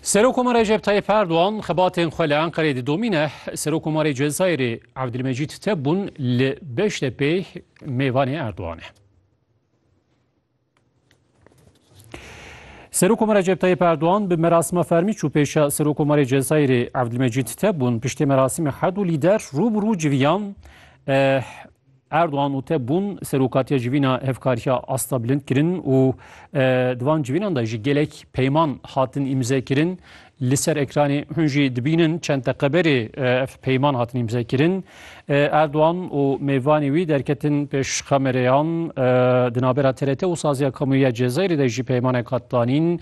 Serokoma Recep Tayyip Erdoğan xebatên xwe li Enqerê didomîne Serokomarê Cezayirê Abdülmecid Tebun li Beştepê mêvanê Erdoğan e. Serokoma Recep Tayyip Erdoğan bi merasima fermî çû pêşa Serokomarê Cezayirê Abdülmecid Tebun piştê merasîmê herdû lîder rû bi rû civiyan Erdogan û te bûn serokatiya civîna hevkariya asta bilind kirin û di van civînan de ji gelek peyman hatin îmze kirin. Li ser ekranê hûn jî dibînin çend teqeberê ev peyman hatin îmze kirin. Erdogan û mêvanê wî derketin pêş kamereyan di navbera TRT û saziya kamuya Cezayirê de jî peymanek hat danîn.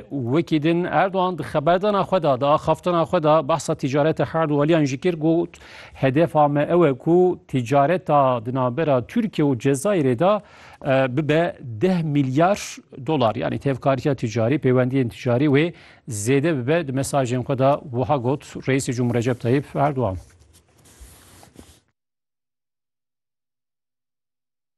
Wekî din Erdogan di xeberdana xwe de di axaftana xwe de behsa tîcareta herd û aliyan jî kir got Hedefa me ew e ku tîcareta di navbera Tirkiye û Cezayirê de bibe deh milyar dolar. Yanî tevkariya tîcarî, pêwendiyên tîcarî wê zêde bibe di mesajên xwe de wiha got Reîsê Cumhur Recep Tayyip Erdogan.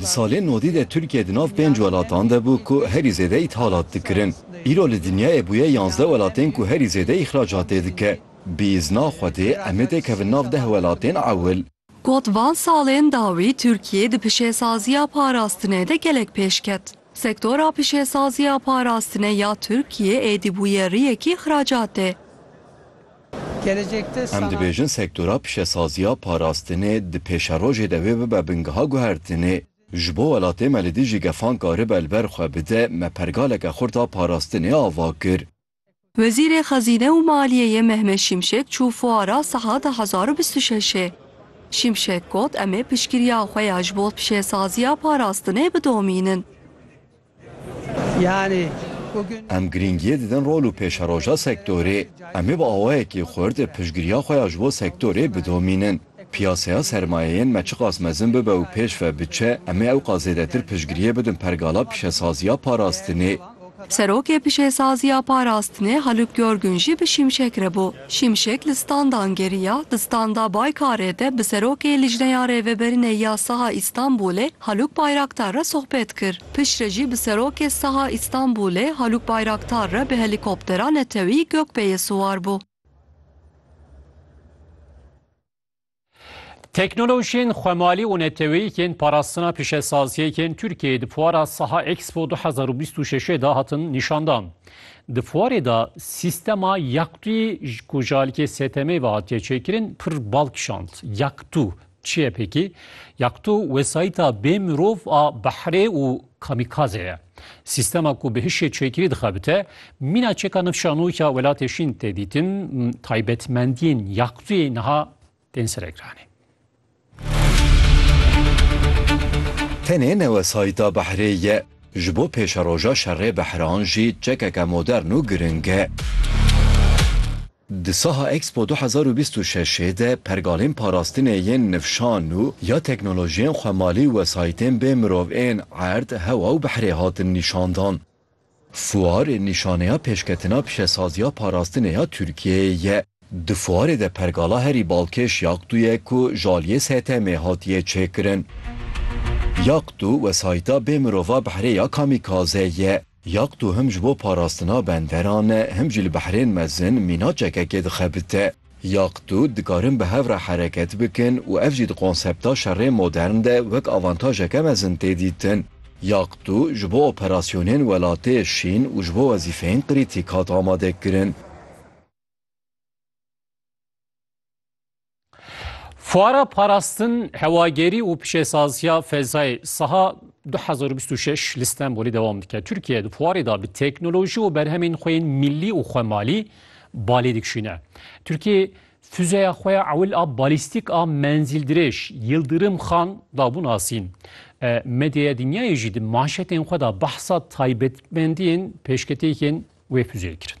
Di salên nodî de Tirkiye di nav pênc welatan de bû ku herî zêde îthalat dikirin. Îro li dinyayê bûye yanzdeh welatên ku herî zêde îxracatê dike. Bi îzna Xwedê em ê têkevin nav deh welatên ewil. Got van salên dawî Tirkiye di pişesaziya parastinê de gelek pêş ket. Sektora pişesaziya parastinê ya Tirkiye êdî bûye riyekî îxracatê. Em dibêjin sektora pişesaziya parastinê di pêşerojê de wê bibe bingeha guhertinê. Ji bo welatê me li dijî gefan karibe li ber xwe bide, me pergaleke xurt a parastinê ava kir. Wezîrê Xezîne û Maliyeyê Mehmet Şimşek çû fuara Siha du hezar û bîst û şeşê. Şimşek got, Em ê piştgiriya xwe ya ji bo pişesaziya parastinê bidomînin. Em girîngiyê didin rol û pêşeroja sektorê. Em ê bi awayekî xurt piştgiriya xwe ya ji bo sektorê bidomînin. Piyaseya sermayeyên me çiqas mezin bibe û pêş ve biçe, em ê ewqas zêdetir piştgiriyê bidin pergala pişesaziya parastinê. Serokê pişesaziya parastinê Haluk Görgün jî bi Şimşek re bû. Şimşek li standan geriya, di standa Baykarê de bi Serokê Lijneya Rêveberinê ya Saha Îstanbulê Haluk Bayraktar re sohbet kir. Piştre jî bi Serokê Saha Îstanbulê Haluk Bayraktar re bi helîkoptera netewî Gökbeyê siwar bû. Teknolojiyên xwemalî û neteweyîkên parastina pîşesaziyekên Tirkiyeyê di fuara Saha Expo 2026 de hatin nîşandan. Di fuarê de sîstema Yaktûyî ku ji alîkê STM'ê ve hatiye çêkirin pir bal kişand. Yaktû çi ye pêkî? Yaktû wesayîta bê mirov a behrê û Kamîkaze ye. Sîstema ku bi hişê çêkirî dixebite, mîna çêka nifşanok ya Welatê Şîn tê dîtin, taybetmendiyên Yaktuyê niha tên seregiranê. Tenê ne wesayîta behrê ye, ji bo pêşeroja şerê behran jî çekeke modern û giring e. Di saha Expo du hezar û bîst û şeş ê de pergalên parastinê yên nifşan û ya teknolojiyên xwemalî û wesayîtên bê mirov ên erd, hewa û bihrê hatin nîşandan. Fuar nîşaneya pêşketina pişesaziya parastinê ya Tirkiyeyê ye. Di fuarê de pergala herî balkêş Yaqtu ye ku ji aliyê STM'ê hatiye çêkirin. Yaqtu wesayîta bê mirova bihrê ya kamîkaze ye. Yaq tu him ji bo parastina benderan e him jî li behrên mezin mîna çekekê dixebite. Yaq tu dikarin bi hev re hereket bikin û ev jî di konsepta şerê modern de wek avantajeke mezin tê dîtin. Yaq tu ji bo operasyonên welatê şîn û ji bo wezîfeyên krîtîk hat amadekirin. Fuara parastin hewagerî û pişesaziya fezayê siha 2026 li Stenbolê dewam dike. Tirkiye di fuarê de bi teknolojî û berhemên xwe yên millî û xwemalî balê dikişîne. Tirkiye Füzeya xwe ya ewil a balîstîk a menzîldirêj Yildirim Xan dabû nasîn. E, medyaya dinyayê jî di manşetên xwe de behsa taybetmendiyên pêşketiyên wê füzeyê kirin.